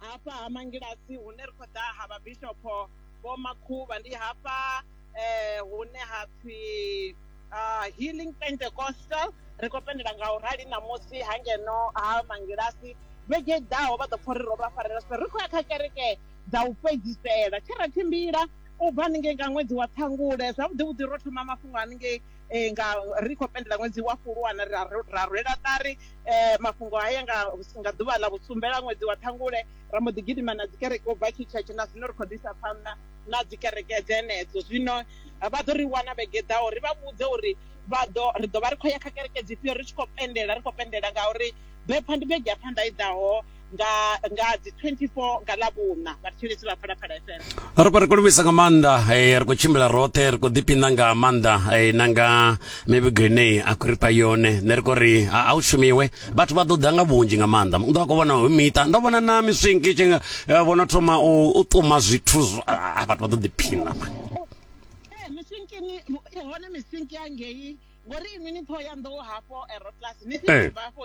hafha ha mangilasi hune ri khou ḓa ha vhabishopho vho makhuvha ndi hafha eh, hune ha pfi uh, healing pentecostal ri khou pendela nga u rali ṋamusi ha ngeno ha mangilasi vhege ḓaho vha ḓo pfha uri ro vha farela so ri khou ya kha kereke dza u fhedzisela tshe ra tshimbila u bva haningei nga ṅwedzi wa ṱhangule zwavhuḓi vhuḓi ro thoma mafhungo haningei eh, nga ri khou pendela ṅwedzi wa fulwana ra ra rwela ṱari eh, mafhungo haya nga nga ḓuvha ḽa vhusumbela ṅwedzi wa ṱhangule ra mbo ḓi gidima na dzikereke u bva tshitshetshe na zwino ri khou ḓisa phanḓa na dzikereke dzenedzo zwino eh, vha ḓo ri wana vhege ḓaho ri vha vhudze uri vha ḓo ri ḓo vha ri khou ya kha kereke dzifhio ri tshi khou pendela ri khou pendela ngauri bepha ndi vhege ya phanḓa i ḓaho nga nga dzi 24 nga ḽa vhuna vhathetshelesi vha phalaphala fm ri khou ri khou livhisa nga maanḓa eh, ri khou tshimbila roṱhe ri khou ḓipina nga maanḓa eh, na nga mivhigo ine a khou ri fha yone nṋe ri khou ri a u shumiwe vhathu vha ḓo ḓa nga vhunzhi nga maanḓa u ḓo a khou vhona hu miṱa ndo vhona na miswinki tshi nga eh, vhono thoma u ṱuma zwithu ah, vhathu vha ḓo ḓiphina mani miswinkini hone miswinki ya ngei ngori inwi ni thoya nḓou hafho aeroclass ni tshi bva hafho